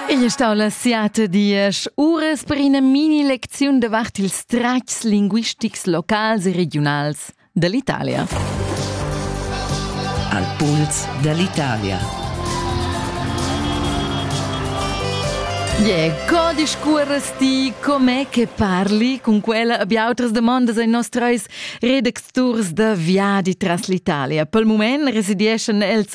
Igl è stau la siata diesch uras per ina mini-lecziun davart ils tratgs linguistics locals e regiunals dall'Italia. Al puls dall'Italia. Yeah, co discuoras ti com'è che parli cun quella abia outras damondas ai nos treis redacturs da viadi tras l'Italia? Pel mument residieschan els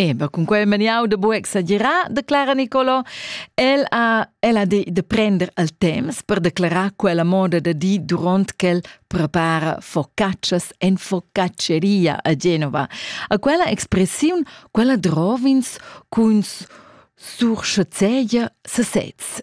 Eba, cun quel maniau da buc exagerar, declara Nicolo. El ha, el ha de, de prender al temps per declarar quella moda da di duront ch'el prepara focaccias en focacceria a Genova. A quella expressiun, quella drovins cun surschazeia sesez.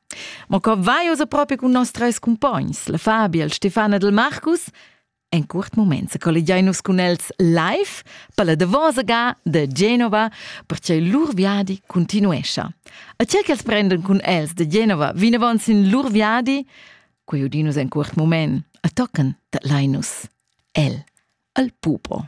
Ma co vai ussa propi cun nos treis cumpogns, la Fabia, il Stefan ed il Marcus? En curt moment se collegiai nus cun els live per la davosa ga de Genova, perche lur viadi continuescha. A che che els prendan cun els de Genova vinavon sin lur viadi, quei udinus en curt moment, a tocken dat Linus el al pupo.